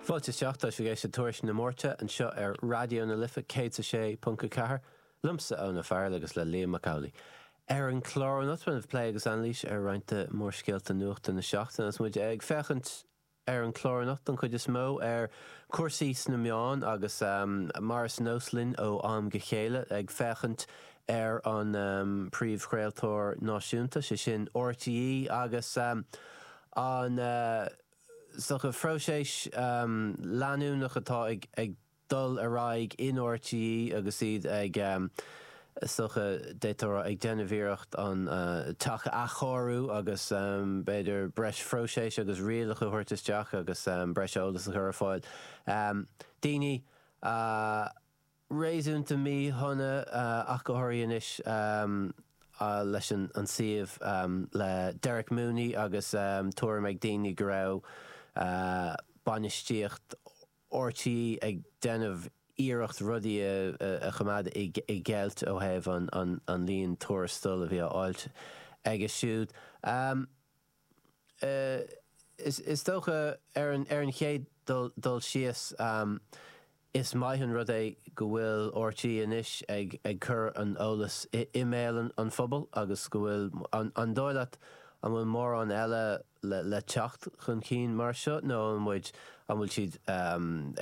Fáilte isteach, tá sibh ag éisteacht le Tuairisc na Máirte anseo ar Raidió na Life 106.4, liomsa Eoin Ó Fearghail agus le Liam Mac Amhlaigh. Ar an chlár anocht beidh plé agus anailís ar roinnt de mhórscéalta nuachta na seachtaine agus muid ag féachaint ar an chlár anocht don chuid is mó ar cúrsaí sna meáin agus mar is nós linn ó am go chéile ag féachaint ar an príomhchraoltóir náisiúnta, sé sin RTÉ agus. an, is dócha, próiseas leanúnach atá ag dul ar aghaidh in RTÉ agus iad ag, is dócha, d'fhéadfá a rá, ag déanamh iarracht an teach a athchóiriú agus b'fhéidir breis próiseas agus rialacha a thabhairt isteach agus breis eolas a chur ar fáil. Daoine a. réasúnta míshona ach go háirithe anois leis an suíomh le Derek Mooney agus tuairim ag daoine go raibh bainistíocht RTÉ ag déanamh iarracht rudaí a choimeád i gceilt ó thaobh an líon tuarastal a bhí á fháilt aige siúd. Is dócha, ar an chéad dul síos, is maith an rud é go bhfuil RTÉ anois ag cur an eolais i mbéal an phobail agus go bhfuil, an dóigh leat an bhfuil mórán eile le teacht chun cinn mar seo nó an muid an bhfuil siad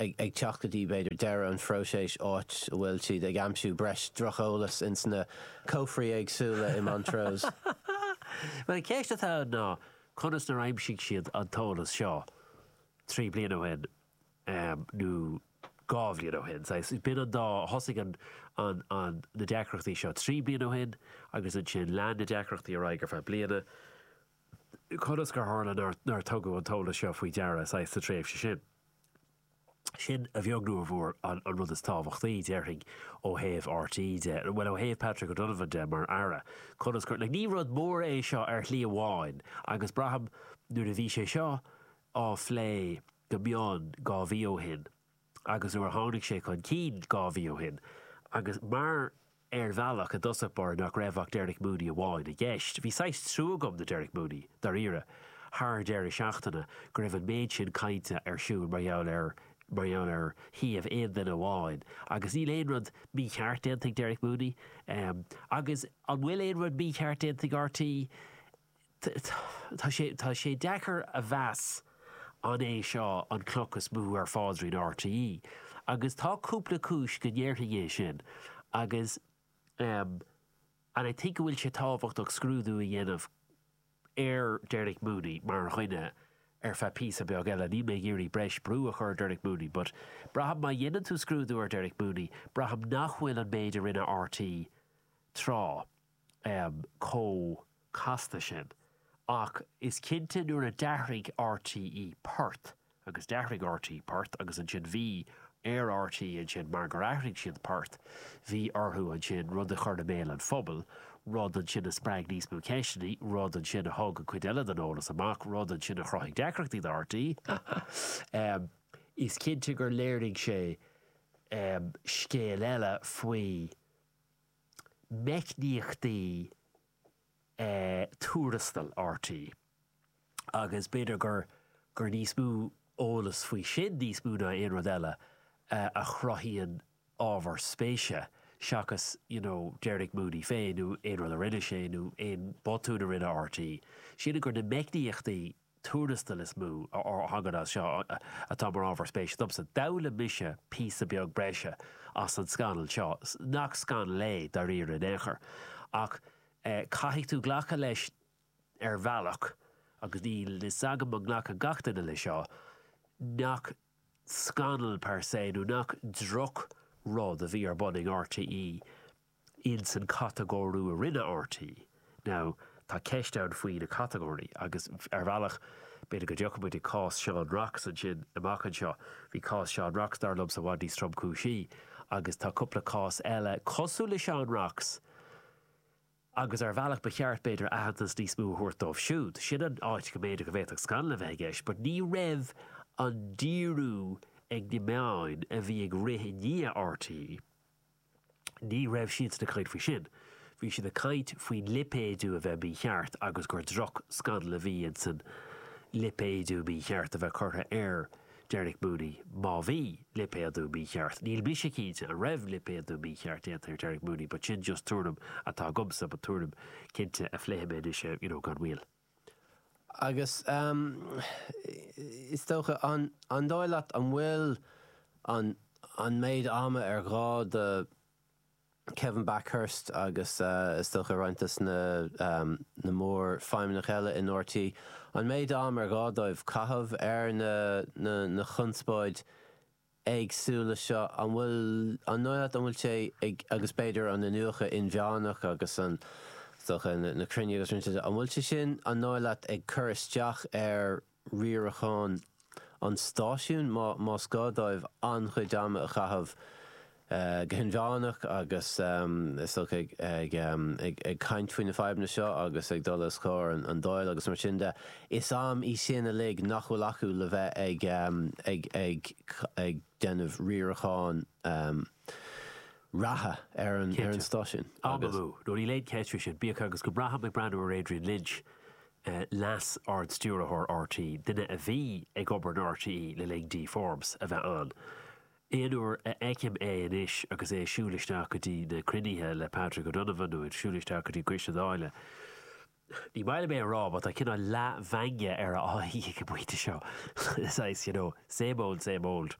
ag teacht go dtí b'fhéidir deireadh an phróiséis áit a bhfuil siad ag aimsiú breis droch-eolas ins na cófraí éagsúla i Montrose. Bhuel, an cheist atá ann ná conas nár aimsigh siad an t-eolas seo trí bliana ó shin nó dhá bhliain ó shin. Saghas, b'in an dá, thosaigh an, an, an, na deacrachtaí seo trí bliana ó shin agus ansin lean na deacrachtaí ar aghaidh ar feadh bliana. conas gur tharla nár tugadh an t-eolas seo faoi deara saghas sa tréimhse sin. Sin, a bheag nó a mhór, an rud is tábhachtaí, déarfainn, ó thaobh RTÉ de, bhuel, ó thaobh Patrick O'Donovan de mar Aire, conas gur. Ní rud mór é seo ar shlí amháin agus braithim nuair a bhí sé seo á phlé go mion dhá mhí ó shin, agus nuair a tháinig sé chun cinn dhá mhí ó shin, agus mar ar bhealach i dtosach báire nach raibh ach Derek Mooney amháin i gceist, bhí saghas trua agam do Derek Mooney, dáiríre, thar deireadh seachtaine, go raibh an méid sin cainte ar siúl mar gheall air, mar gheall ar shuíomh aon duine amháin, agus níl aon rud mícheart déanta ag Derek Mooney, agus an bhfuil aon rud mícheart déanta ag RTÉ? Tá sé deacair a mheas an é seo an chloch is mó ar pháidrín RTÉ agus tá cúpla cúis go ndéarfainn é sin agus and I think go bhfuil sé tábhachtach scrúdú a dhéanamh ar Derek Mooney mar dhuine ar feadh píosa beag eile. Níl mé ag iarraidh breis brú a chur ar Derek Mooney but braithim má dhéanann tú scrúdú ar Derek Mooney braithim nach bhfuil an méid a rinne RTÉ tráth chomh casta sin. Ach is cinnte nuair a d'athraigh RTÉ port, agus d'athraigh RTÉ port agus ansin bhí ar RTÉ ansin mar gur athraigh siad port, bhí orthu ansin rud a chur i mbéal an phobail, rud ansin a spreag níos mó ceisteanna, rud ansin a thug an chuid eile den eolas amach, rud ansin a chruthaigh deacrachtaí do RTÉ. Is cinnte gur léirigh sé scéal eile faoi. meicníochtaí tuarastail RT agus b'fhéidir gur gur níos mó eolas faoi sin, níos mó ná aon rud eile, a chruthaíonn ábhar spéise seachas you know Derek Mooney féin nó aon rud a rinne sé nó aon bhotún a rinne RT, sin gur na meicníochtaí tuarastail is mó a thagann as seo atá mar ábhar spéise domsa. D'fhoghlaim mise píosa beag breise as an scannal seo, nach scannal é dáiríre in aon chor, ach caithfidh tú glacadh leis ar bhealach, agus níl fhios agam an nglacann gach duine leis seo, nach scannal per se nó nach droch rud a bhí ar bun ag RTÉ. in san catagóiriú a rinne RT. Now, tá ceist ann faoi na catagóirí agus, ar bhealach, b'fhéidir go dtiocfaidh muid ag cás Seán Rocks ansin amach anseo. Bhí cás Seán Rocks, dar liomsa, i bhfad níos tromchúisí agus tá cúpla cás eile cosúil le Seán Rocks agus, ar bhealach, ba cheart, b'fhéidir, aitheantas níos mó a thabhairt dóibh siúd. Sin an áit go mb'fhéidir go bhféadfadh scannal a bheith i gceist but ní raibh an díriú ag na meáin a bhí ag rith i ndiaidh RT, Ní raibh siad sin ag caint faoi sin. Bhí siad ag caint faoin lipéadú a bheith mícheart agus gur droch scannal a bhí insan lipéadú mícheart a bheith curtha ar Derek Mooney, má bhí lipéadú mícheart. Níl mise cinnte an raibh lipéadú mícheart déanta ar Derek Mooney but sin just tuairim atá agamsa but tuairim cinnte a phléifidh mé anois you know gan mhoill. Agus is dócha, an dóigh leat, an bhfuil an méid ama ar ghá do Kevin Bakhurst agus is dócha roinnt de na mór feidhmeannach eile in rte, an méid am ar ghá dóibh caitheamh ar an chonspóid éagsúil leis seo, an bhfuil, an dóigh leat, an bhfuil sé ag, agus b'fhéidir an t-iniúchadh inmheánach agus an, is dócha, na cruinnithe agus roinnt de, an bhfuil sé sin, an dóigh leat, ag cur isteach ar riarachán an stáisiúin, má, más gá dóibh an-chuid ama a chaitheamh, go hinmheánach agus is dócha ag caint faoi na fadhbanna seo agus ag dul os comhair an Dáil agus mar sin de, is am í sin uilig nach bhfuil acu le bheith ag déanamh riaracháin reatha ar an stáisiún. Am amú, ó níl aon cheist faoi sin, bíodh agus go mbraithim ag breathnú ar Adrian Lynch, Leas-Ardstiúrthóir RTÉ, duine a bhí ag obair in RTÉ le linn Dee Forbes a bheith ann, Aon uair a fheicim é anois agus é ag siúl isteach go dtí na cruinnithe le Patrick O'Donovan nó ag siúl isteach go dtí Coiste Dála, ní maith liom é a rá but tá cineál leathmheangadh ar a aghaidh ag an bpointe seo, saghas, you know, same old, same old.